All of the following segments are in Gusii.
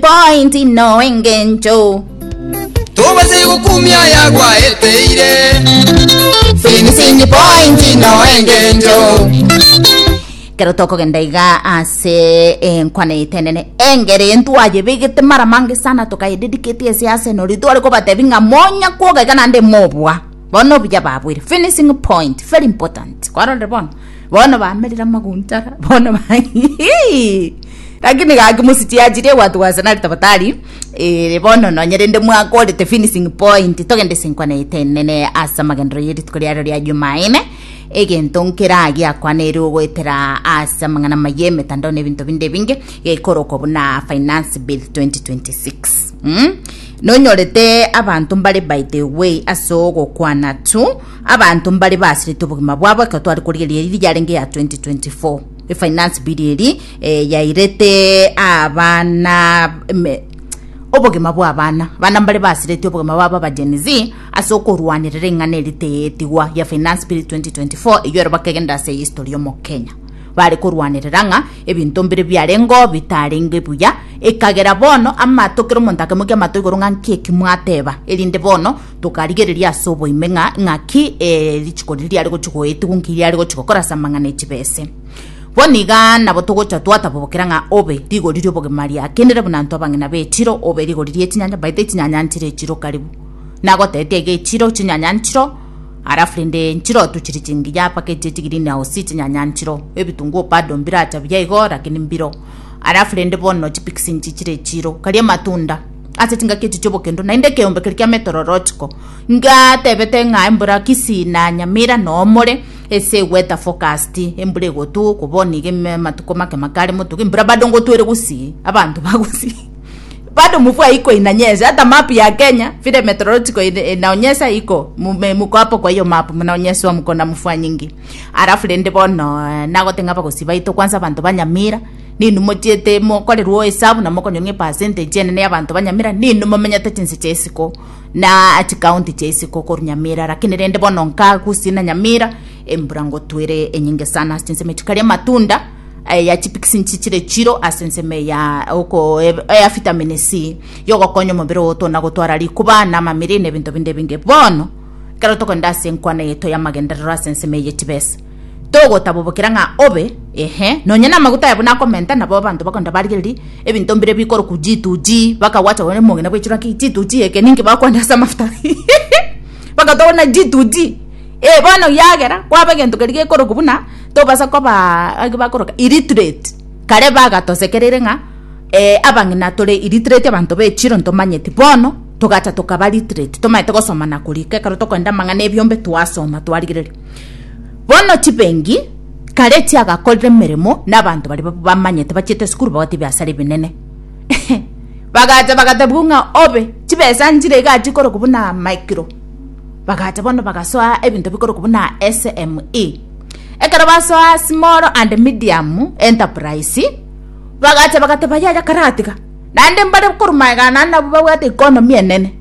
Point no engencho. Tobase gokumia yagwaeteire Finishing point no engencho. Kero tokogenda iga ase enkwana etenene engeri ntwayebegete mara mange sana tukayededicate ase Arsenal ritware kobatebi ng'a monya kwoga iga naende mobua bono obuya babwire finishing point very important kwarorire bono bono bamerire amaguntara bono ba lakini gaki mositiachirie gwatugwa ase nari tafadhali eh, bono nonye rende mwakorete finishing point togende sinkwana etenene ase amagendero y'erituko riario ria jumaine egento nkera giakwanere ogoetera ase amang'ana maye emetandao na ebinto binde binge gekorokwa buna finance bill 2026 mm? nonyorete abanto mbare by the way ase ogokwana tu Abanto mbare basirete obogima bwabo ekero tware korigereria eyiri yarenge ya 2024 efinance bill eri eh, yairete abana me- obogima bwa abana abana mbare basirete obogima bwabo aba Gen Z ase okorwanerera eng'ana eri teyetigwa ya finance bill 2024 eyio ero bakegenda ase history y'omokenya bare korwanerera ng'a ebinto mbire biarenge oo bitarenge buya ekagera bono amato kera omonto akemokia amato igoro ng'a nki eki mwateba erinde bono Tokarigereria ase oboime ng'a ng'aki eh, richiko riri riare gochi goetigwa nki riare gochi gokora ase amang'ana e chibese. Bono iga nabo togocha twatabobokera ng'a obe rigori ri'obogima riakenire buna ntwe abang'ina b'echiro, obe rigori ri'echinyanya, baete echinyanya nchire echiro karibu. Nagoteete iga echiro, chinyanya nchiro, alafu rende nchiro tochiri chingiya mpaka echi echi green house chinyanya nchiro. Ebitunguo bado mbiracha buya igo, lakini mbiro. Alafu rende bono chipikisi nchichire echiro, karia amatunda. ase chingaki echi chi'obokendo, naende ekeombe keria kia metro orochiko, ngatebete ng'a embura kisii na nyamira noomore ase egweta forecast embura egotwa oko bono iga ime amatuko make make are motuga embura bado ngotwa ere gusii abanto bagusii bado mvua haiko inanyesha ata map ya kenya vile metrological ine inaonyesha haiko mume muko hapo kwa hiyo map mnaonyeshwa mkona mvua nyingi alafu rende bono nagoteba ng'a abagusii baito kwanza abanto ba nyamira. Ninwe mochiete mokorerwa esabu na mokonywa ng'a epercentage enene y'abanto ba Nyamira ninwe momenyete chinse chia isiko na chikaunti chia isiko korwa Nyamira lakini rende bono nkagusii na Nyamira embura ngotwere enyinge sana ase ensemo echi kare amatunda eh, ya chipikisi nchi chire chiro ase ensemo ya oko eh, ya vitamin C yogokonya omobere oto na gotwara rikuba na amamiri na ebinto binde ebinge bono ekero tokogenda ase enkwana yaito y'amagenderero ase ensemo eye y'echibesa togotabobokera ng'a obe, ehe, nonya namaguta aya buna akomenta, nabo abanto bakonda barigererie ebinto mbire bikorokwa chituchi, bakagwacha gose omogina bwechirwa ki chituchi eke ninki bakwenda ase amafuta bagatoa buna chituchi, ee bono ekiagera kwaba egento keria gekorokwa buna tobasa kobaa agi bakoroka illiterate, kare bagatosekereire ng'a abang'ina tore illiterate abanto bechiro ntomanyeti, bono togacha tokaba literate tomanyete gosoma na korika ekero tokorenda amang'ana ebiombe twasoma twarigereria. Bono chibengi kare chiagakorire emeremo na abanto baria bamanyete bachiete esukuru bagote ebiasara ebinene bagacha bagatebiwa ng'a obe chibesa nchire iga chikorokwa buna micro bagacha bono bagasoa ebinto bikorokwa buna SME ekero basoa small and medium enterprise bagacha bagateba yaya karatiga naende mbare korwa magega ane nabwo babwate economy enene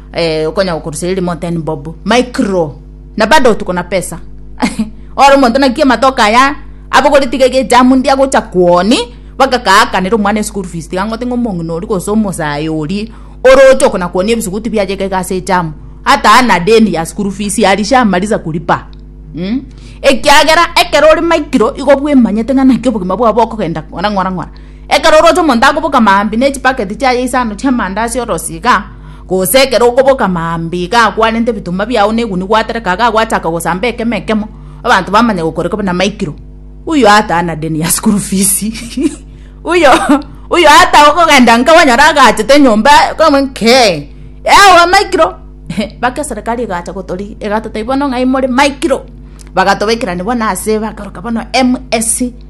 eh, okonya gokoruseria rimo ten bob micro na bado tuko na pesa ore omonto naki amatoka aya abogore tiga ege jamu ndia gocha kwoni bagakaakanera omwana eschool fees tiga ngote ng'a omong'ina ori gose omosae ori oroche okona kwoni ebisuguti biaye iga iga ase ejamu hata ana deni ya school fees alishamaliza kulipa mm? ekiagera ekero ore micro igo bwemanyete ng'a naki obogima bwao bokogenda ng'ora ng'ora ng'ora Ekero oroche omonto akoboka maambia ne chibaketi chiaye isano chi'amanda ase orosi iga, gose ekero okoboka maambia iga akwarente ebitomba biao negunia gwatereka iga gwachaka gosamba ekemo ekemo, abanto bamanye gokore kobe na maikiro. Uyo ata ana deni ya school fees uyo uyo ata okogenda nka onyore agachete nyomba kang'we nkee yao amaikiro baka eserekari egacha gotori egatotebia bono ng'ai more maikiro, bagatobaikerani bono ase bakoroka bono MSC.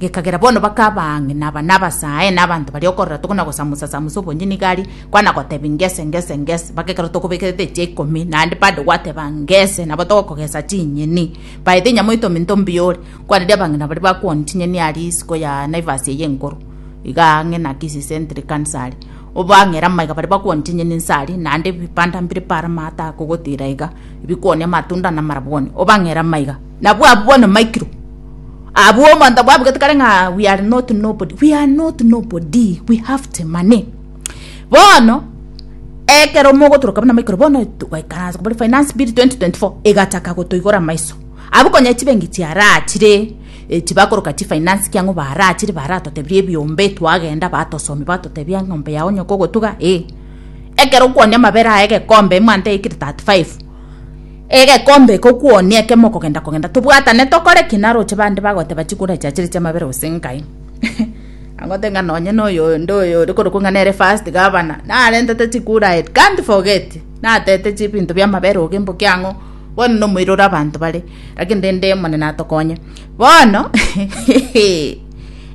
gekagera bono bakaba ang'e na aba nabasae na abanto baria okorora toko na gosamusa-samusa obonye nigo aria, kwana gotebia ngese, ngese, ngese, mpaka ekero tokobekerete echia ikomi, naende bado gwateba ngese, nabo togokogesa chinyeni. Baete enyama oitome into mbiyore, kwana riria abang'ina baria bakwoni chinyeni aria isiko ya Naivas eye enkoro, iga ang'e na Kisii Century kanisa aria, obang'ere amaiga baria bakwoni chinyeni inse aria, naende ebipanda mbire paro amaato akogotiira iga. ebikooni, amatunda, na amarabwoni, obang'ere amaiga, nabwo abwo bono maikirwe abwo omonto bwabugete kare ng'a we are not nobody we are not nobody we have the money bono ekero mogotoroka buna maikoro bono twaikaransa kobori finance bill 2024 egachaka gotoigora maiso abwo konya chibengi chiarachire eh, chibakoroka chifinance kiang'o barachire baratotebirie ebiombe twagenda batosomia batotebia eng'ombe yao nyoko ogotuga eh Ekero okwonia amabere aya egekombe emanta eikire 35 egekombe eke okwonia ekemo okogenda kogenda tobwatane tokore ki naro oche bande bagoteba chikura chia chire chi'amabere gose nkai agote ng'a nonye na oyo onde oyo ore korokwa ng'a nere first governor narentete chikura I can't forget natete chibinto bi'amabere ogo emboki ang'o bono na omoiroro abanto bare lakini rende omonene atokonye bono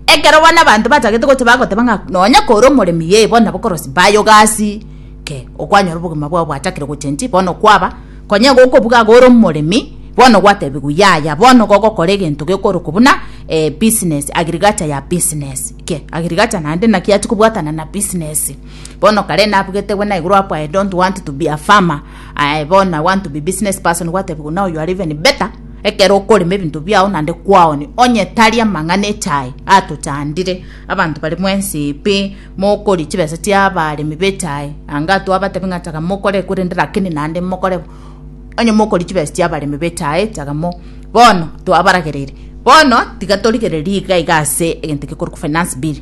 Ekero bono abanto bachagete gocha bagoteba ng'a nonya kore omoremi yee bono nabo korosi baye ogasi ke okwanyora obogima bwao bwachakire gochenji bono kwaba konya igo okobuga iga ore omoremi bono gwatebigwe yaya bono igo ogokora egento gekorokwa buna eh business agriculture ya business ke agriculture naende naki achi kobwatana na business bono kare nabugete buna igoro hapo I don't want to be a farmer aye bono I want to be business person gwatebigwa now you are even better Ekero okorema ebinto biao naende kwaoni, onye tari amang'ana echae atochandire, abanto bare mwensi epe, mokorie chibesa chi'abaremi b'echae, anga atwabatebi ng'a chaga mokore, korende rakini naende mokore bo, onye mokoria chibesa chi'abaremi b'echae chaga mo. Bono twabaragereire, bono tiga torigererie iga iga ase egento gekorokwa finance bill.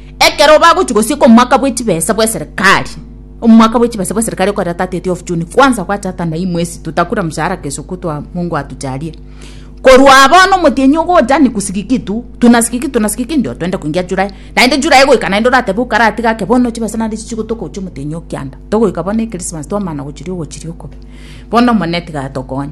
Ekero bagochia gosieka omwaka bwe chibesa bw'eserikari, omwaka bwe chibesa bw'eserikari okorera 30th of June, kwanza gwachatana hii mwezi tutakula mshahara kesho kutwa Mungu atujalie. Korwa bono omotienyi ogocha ni kusigiki kitu, tunasigiki tunasigiki ndio twende koingia July. Naende July goika naende oratebe okaratiga ake bono chibesa naende chichigotoka gochia omotienyi o kianda. Togoika bono Christmas twamana gochiria ogochiria okobe. Bono Omonene tiga atokonye.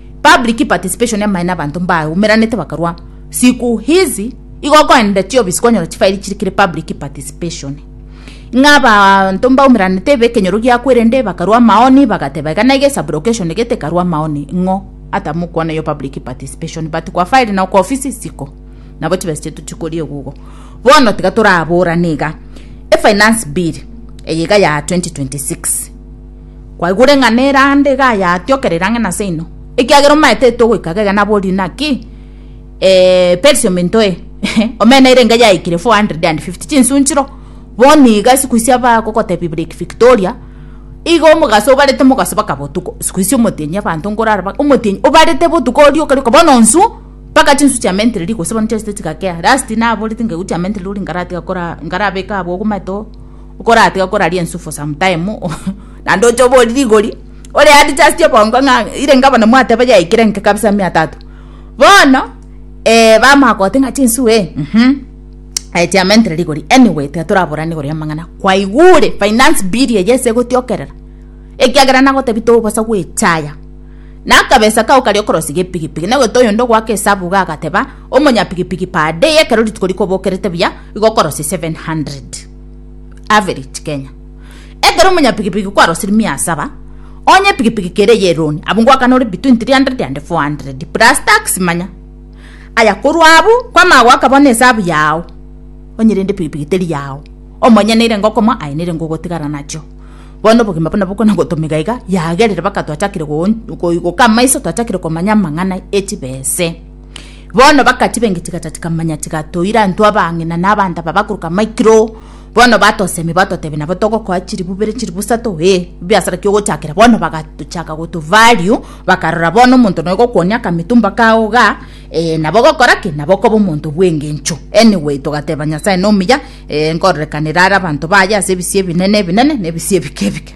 Public participation amaene abanto mbaumeranete bakarwa siku hizi igo okoenenda chiofisi kwanyora chifairi chiri kere public participation ng'a abanto mbaumeranete ebe ekenyoro giakwa erende bakarwa amaoni bagateba iga naiga esublocation egete ekarwa amaoni ng'o atamokwana yo public participation but kwa file na kwa ofisi siko nabo chibesa chiaito chikori egugo bono tiga toraborane iga efinance bill eye iga ya 2026 Kwaigure ng'a nerande iga yatiokerire ang'e na seino, ekiagera omaetete ogoika gega naborie naki eh Persia ominto eh omena erenge yaikire 450 chinsu nchiro boni iga siku isia bagogotebia Lake Victoria iga omogaso obarete mogaso baka botuko siku isia omotienyi abanto nkorara ba omotienyi obarete botuko oria okarua okaba bono nsu mpaka chinsu chia mentireri gose bono chiaisete chigakea last naboreti ngegu chia mentireri ori nkaratiga kora nkarabeka abwo ogomaete oo. Okoratiga koraria ense for some time naende oche obori rigori ore adjust obongo ng'a ire inga bono mwateba yaikire enke kabisa mia tatu. Bono eh bamanya gogote ng'a chinsu eh mh aye chiamentere rigori anyway tiga toraborane igoro y'amang'ana kwaigure finance bill eye ase egotiokerera ekiagera nagotebia tobosa gocha aya na akabesa kao karia okorosiga epigipigi nagwete oyonde ogoaka esabu iga agateba omonya pigipigi per day ekero rituko rikobokerete buya igo okorosia seven hundred. Average Kenya. Ekero omunyapigipigi kwarosiri mia asaba, onye epigipigi kere eye eroni, abwo ngoakana ore between 300 and 400 plus tax manya. Aya korwa abwo, kwamanya goaka bono esabu yao, onye rende epigipigi teri yao, omonye neire ngokomoa aye neire ngogotigara nachio. Bono obogima buna bokona gotomiga iga, yagerire baka twachakire goon goi goka amaiso twachakire komanya amang'ana echibese. Bono bakatiba engechiga tati kamanya tigatoira anto abang'ina na abanda baba korwa maikiro bono batosemia batotebia nabo togokoa chilibu bere chilibu sato ee biasara kiogochakera bono bagatochaka goto value bakarora bono omonto noyo gokuonia akametumba kao igaa ee nabo ogokora ki nabo okoba omonto bwengencho anyway togateba nyasaye nomuya ee nkororekanera are abanto baye ase ebisio ebinene ebinene na ebisio ebike ebike.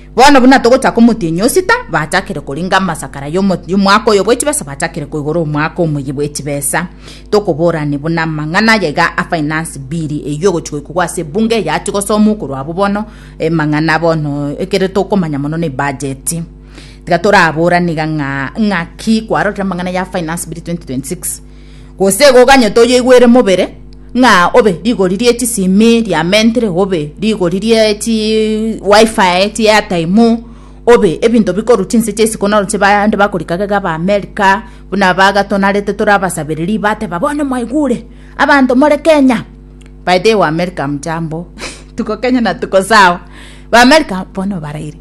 Bono buna togochaka omotienyi o sita, bachakire koringa amasakara y'omwaka oyo bw'echibesa, bachakire koigora omwaka omoyia bw'echibesa. Tokoborani buna amang'ana aya iga a finance bill eyio ogochi goikogwa ase ebunge eyachi gosomwa okorwa abwo bono emang'ana bono ekere tokomanya mono ne ebudget. Tiga toraborane iga ng'a ng'aki kwarorire amang'ana ya finance bill 2026. Gose goganyete oyoigwere mobere, ng'a obe rigori rie chisimi ria mentre, obe rigori rie chi wifi, chi airtime, obe ebinto bikorwa chinse chia isiko naro nche bande bakorika gega aba America, buna aba gatonarete tore abasabereri bateba bono mwaigure, abanto more Kenya, by the way wa America hamjambo, tuko Kenya na tuko sawa, ba America bono baraire,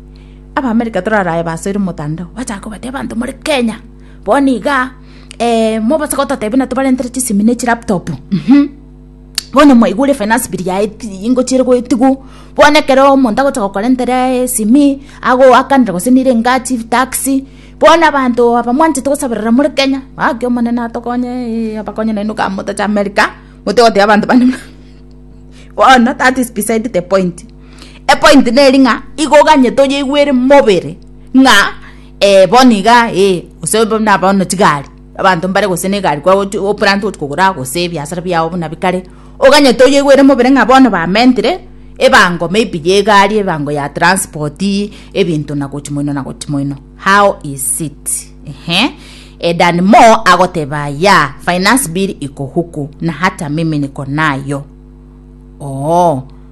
aba America torarae basoire motandao, bachaka kobati abanto more Kenya, bono igaa. eh, mobase gototebi na tobarentere chisimi ne chilaptop mhm bono mwaigure finance bill yaye ingo chire goetigwo bono ekero omonto agocha gokorentera esimi ago akanire gose nire engachi taxi bono abanto aba mwanchete gosaberera more kenya gaki omonene atokonye eh, abakonye naino ka motache america mote goteba abanto bande buna bono that is beside the point epoint neri ng'a igo ganye toyeigwere mobere ng'a Ee, bono iga, ee, gose buna bono chigari, abanto mbare gose negari kwa gochi oplante gochi kogora gose ebiasara biago buna bikare, oganyete oyeigwere mobere ng'a bono bamentire ebango maybe ya egari, ebango ya transport, ebinto na gochi moino na gochi moino, how is it? Ehe, e than more agoteba ya, finance bill iko huku na hata mimi niko nayo. Oo.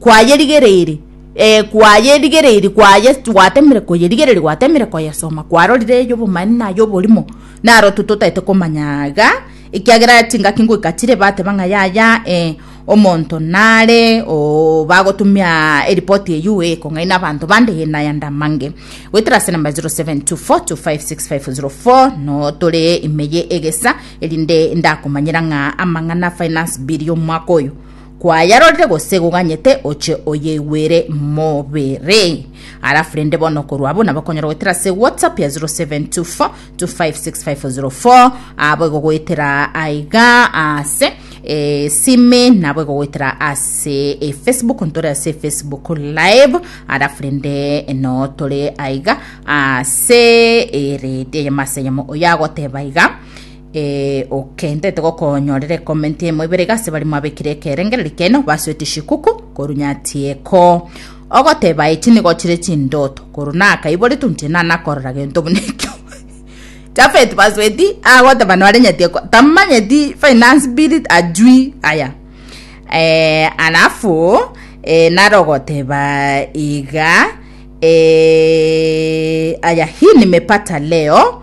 Kwayerigereiri, ee, kwayerigereiri, kwaye, gwatemire koyerigereria, gwatemire koyesoma, kwarorire ey'obomanene na ay'oborimo, naro to totaete komanya iga, ekiagera chingaki ngoika chire bateba ng'a yaya, ee, omonto nare, oo, bagotumia eripoti eyio, ee, kong'aina abanto bande, ee, naya ndamange. Goetera ase enamba 0724256004, no tore ime ye egesa, erinde ndakomanyera ng'a amang'ana finance bill y'omwaka oyo, Kwayarorire gose goganyete oche oyeigwere mobere. Alafu rende bono korwa abwo nabo okonyora goetera ase WhatsApp ya 0724256504 abo igogoetera aiga ase eh, sime nabo igogoetera ase eh, Facebook ntore ase Facebook live alafu rende no tore aiga ase eh, redi eyemo ase eyemo oyagoteba iga Ee, okentete gokonyorera ekomenti emo ibere iga ase bari mwabekire ekerengereri keno basuete shikuku koru nyatieko ogoteba echi nigo chire chindoto koru naka iboretu nche nanakorora gento buna ekio Jafet Basweti agoteba nore nyatieko tamanyeti finance bill ajui aya eh, alafu eh, nare ogoteba iga eh, aya hii nimepata leo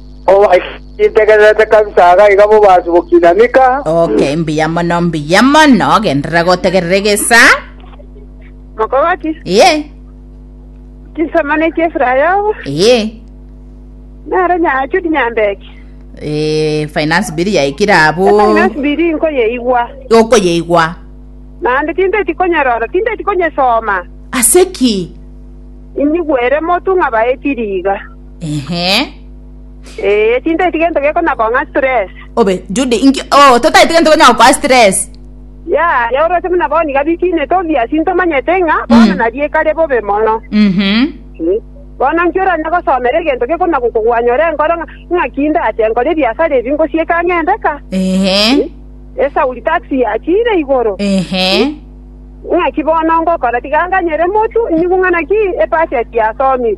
Obaitegererete kabisa iga iga bobaasi bokina mika. Okay, mbuya mono, mbuya mono. Genderera gotegerera egesa. Mokogoti, Eye, chisamana echi efura yobo, eye. naro nyachudi nyambeki. Eh, finance bill yaikire abu. Efinance biri nkoyeigwa. Okoyeigwa. Naende tinteti konyorora, tinteti konyesoma. Aseki. Inyigwere motu ng'a baetiri iga. Ehe. Ee, tintaeti gento gekona kong'a stress. Obe, Judy, inki... Oh, totaeti gento konya gokoa stress. Ya, ya orose muna boni gabikiine tobia sintomanyete ng'a bono nariekare bobe mono. Mhm. Eh, Bono inki oranya gosomera egento gekona gokogwanya ore enkoro ng'a ng'aki ndache nkore ebiasara ebi ngosieka ng'ende ka? Ehe. Esauri taxi yachire igoro. Ehe. Ng'aki bono ngokora tiga nganyere motu nyigu ng'a naki ebudget yasomire.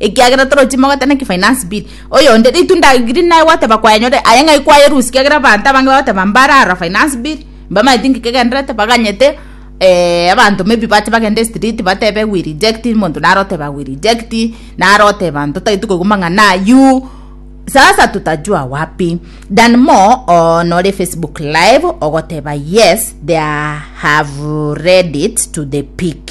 ekiagera toro chimogete na ki finance bill oyonde ritu ndagiri naye gwateba kwanyore aye ng'ai kwaye rusi kiagera abanto abange bagoteba mbara ara finance bill mbamaeti nki kegenderete baganyete eh, abanto maybe bache bagende street batebe we reject monto naro oteba we reject naro oteba ntotaeti koigwa mang'ana ayu sasa tutajua wapi than more on ore facebook live ogoteba yes they are- have read it to the peak